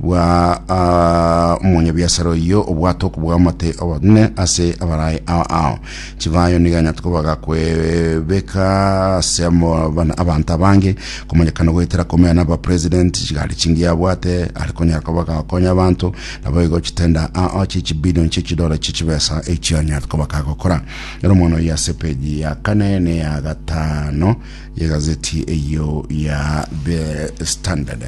Bwa ah, omonyabiasara oyio obwate okobua amate obonene ase abaraai ao ao. Chibayo nigo anyate koba gakwebeka ase amo- bana- abanto abange, komanyekana goetera komenya na abapresident, chigari chingiya abwate, are konyara koba gakonya abanto, naboigo chitenda ao chie chibilion chie chidora chie chibesa echio anyate koba gagokora. Ero omwana oyio ase page ya kane na eya gatano Egazeti eyio ya The Standard.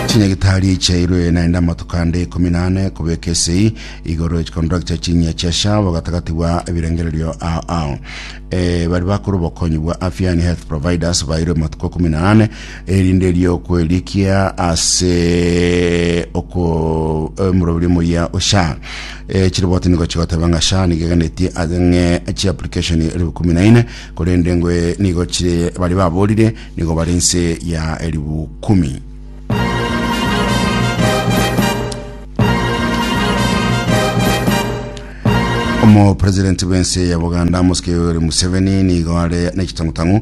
Chinyagitari chiairwe naende amatuko ande ikomi na ane kobeka esei igoro chikondora chia chinyia chia shabo gatagati bwa ebirengererio ao ao. Eh, bari bakora obokonyi bwa afya yani health providers bairwe amatuko ikomi na ane erinde riokwerikia ase oko omorobiri moyia osha chiriboti nigo chigoteba ng'a sha nigo eganetie ang'e chiapplication elifu kumi na ine korende ngwe nigo chire bari baborire nigo bari nse ya elifu kumi omopresidenti bw'ense ya buganda mosike yoweri museveni nigo are nechitangutangu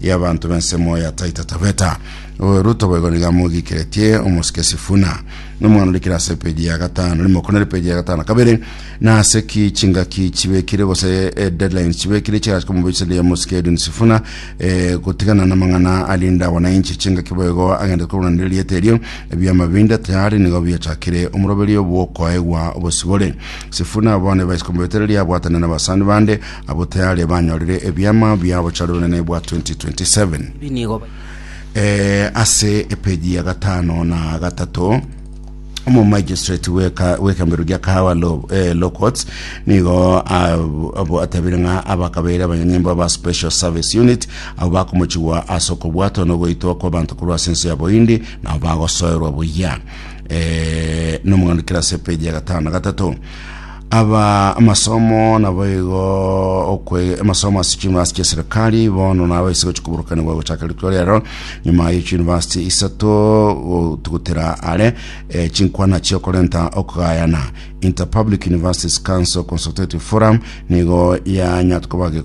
y'abanto b'ensemo ya Taita Taveta. O Ruto boigo nigo amogiikeretie omosike Sifuna, na omwana ore kera ase epeji ya gatano rimo kona epeji ya gatano kabere, na ase ki chingaki chibekire gose eh, deadlines chibekire chigachia komobecheria omosike Edwin Sifuna eh, gotigana n'amang'ana arinde abananchi chingaki boigo agende korwanera erieta erio. Ebiama binde tayari nigo biachakire omoroberio bw'okoegwa obosibore. Sifuna bono ebaise komobetereria abwatane n'abasani bande Abwo tayari banyorire ebiama bia obochare obonene bwa 2027. Ebi nigo bi- Eh, ase epeji ya gatano na gatato omomagistrate weka- wekambero gia kahawa lo, eh, law courts nigo ab- abo atabire ng'a abakabeire abanyanyimbo ba special service unit abo bakomochigwa ase okobwatwa na ogoitwa kw'abanto korwa ase ense ya bohindi nabo bagosoerwa buya eh, nomogano kera ase epeji ya gatano na gatato Aba amasomo nabo igo okwe amasomo ase chiyunivasiti chia serikali bono nabo ase gochia koburukanigwa gochaka rituko riaro nyuma ye chiyunivasiti isato gotugutera are eh, chinkwana chia okorenta okogayana Interpublic Universities Council Consultative Forum nigo yanyatoka bage